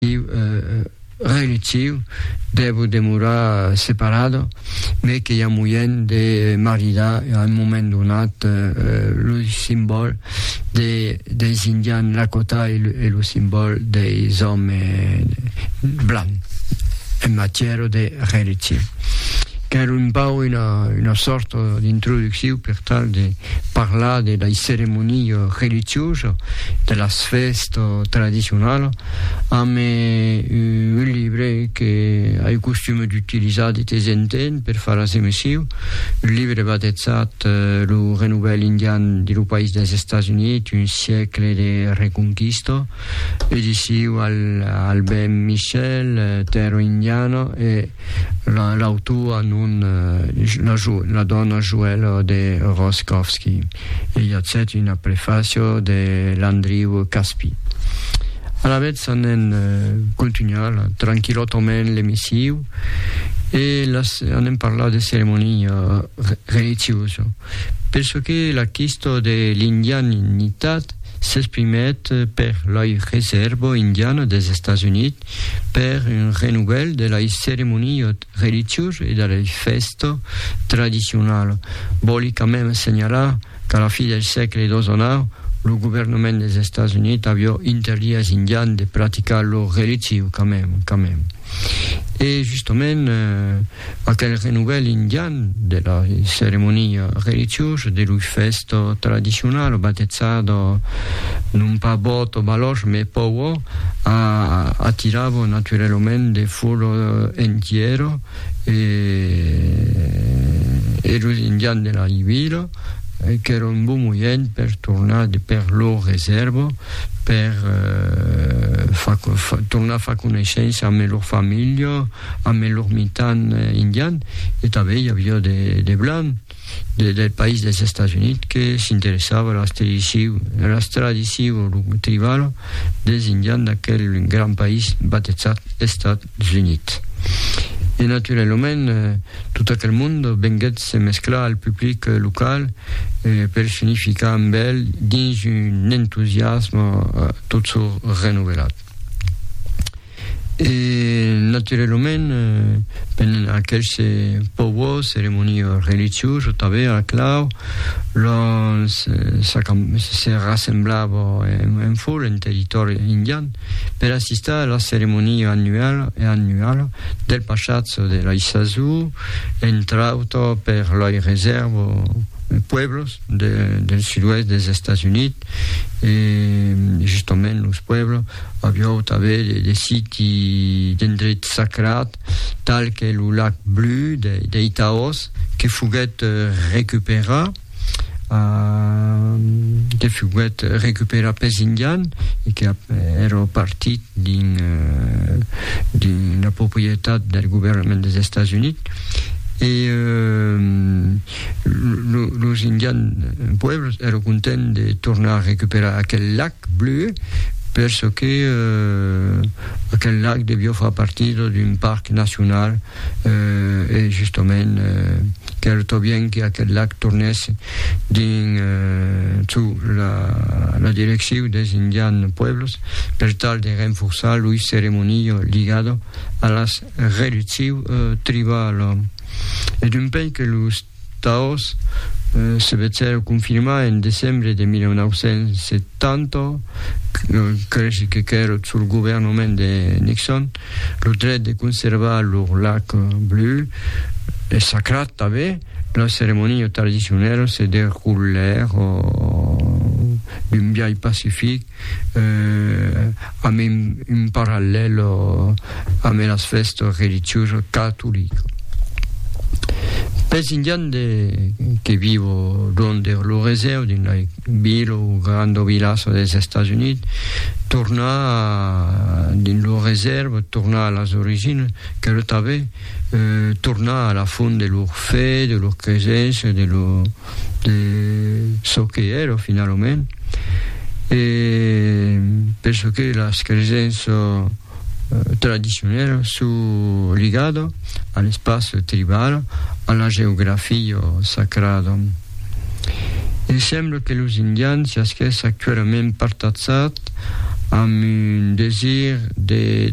iu relutiu dèvo demorar separado, mai que i a moièn de maridar a un moment donat lo simbòl de, deis indians Lakota e lo simbòl deis òmes blancs en matièra de relutiu. Qu'èra un pauc una sòrta d'introducciu per tal de Parlar de lei ceremonia religiosa, de las fèsta tradicionala, amb un libre que ai costume d'utilizar de tes en temps per far as emesiu, un libre batetzat Lo Renouvel Indian de lo País dels Estats Units, un siècle de reconquista, ediciu Albin Michel, Terra Indiana, e. La, l'autora non, la, jo, la dòna Joèla de Roscòvski. E i a cèt una prefaciò de Landriu Caspi. Alavetz anem contunhar la, tranquilòtament l'emissiu e las, anem parlar de ceremonia re, religiosa. Per çò que la quistò de l'indianitat s'exprimèt per l'Oi Reserva Indiana des Estats Units, per un renouvèl de lei ceremoniot religiós e de lei fèsta tradicionala. Vòli quand mèm assenhalar qu'a la fi del sègle xix, lo governament dels Estats Units avió interdit als Indians de practicar lor religiu quand mèm, quand mèm. E justament, Aquel renovel indian de la ceremonia religiosa de lor fèsta tradicionala batezada non pas Bòto Balòsh mai Powo a atirava naturalament de fola entièra e e los indians de la vila qu'èra un bon moient per tornar per lor resèrva per tornar far coneissença amb lor familha ambe lor mitan indian, e tanben i aviá de blancs del país dels Estats Units que s'interessavan a las tradicions tribalas dels indians d'aquel grand país batejat Estats Units. E naturalament, tot aquel mond venguèt se mesclar al public local per s'unificar amb el dins un entusiasme tot çò renovelat. E naturelament, ben aqueles pauors ceremonies religioses tanben a la clau, l'on se rassemblava en foule en territòri indian per assistar a la ceremonia annuala del passatge de l'Aissazou, entre autres per lei reservas pueblos, del sud-oèst dels Estats Units e justament los pueblos aviáu tanben de siti d'endrets sacrats tal que lo lac blu dei Taos que foguèt recuperat que foguèt recuperat pels Indians e que èra partit dins la proprietat del governament dels Estats Units e Los indians pueblos èra content de tornar a recuperar aquel lac bleu per çò que aquel lac devió far partida d'un parc nacional e justament qu'èra tobien que aquel lac tornèsse dins çò la direccion dels indians pueblos per tal de renforçar loi ceremonia ligada a las reduccion tribala. e d'un pei que los Taòs se vechèron confirmar en decembre de 1970, cresh que qu'èra sul governament de Nixon, lo dret de conservar lor lac bleu e sacrat tanben, las ceremonias tradicionalas se deroulèron d'un biais pacific, eh, a mem un parallelo a me las festa religiosa catolica. Pes indian de que vivo donde lo reseu din la vila o granda vilassa des Estats Units, tornar din lo reserva, tornar a las origines, que lo tave, eh, tornar a la font de lor fe, de lor cresença, de lor de çò que èra finalament e penso que las cresenças tradicionèlas son ligadas a l'espaç tribal, a la geografia sacrada. E sembla que los indians siasquèss actualament partazats amb un desir de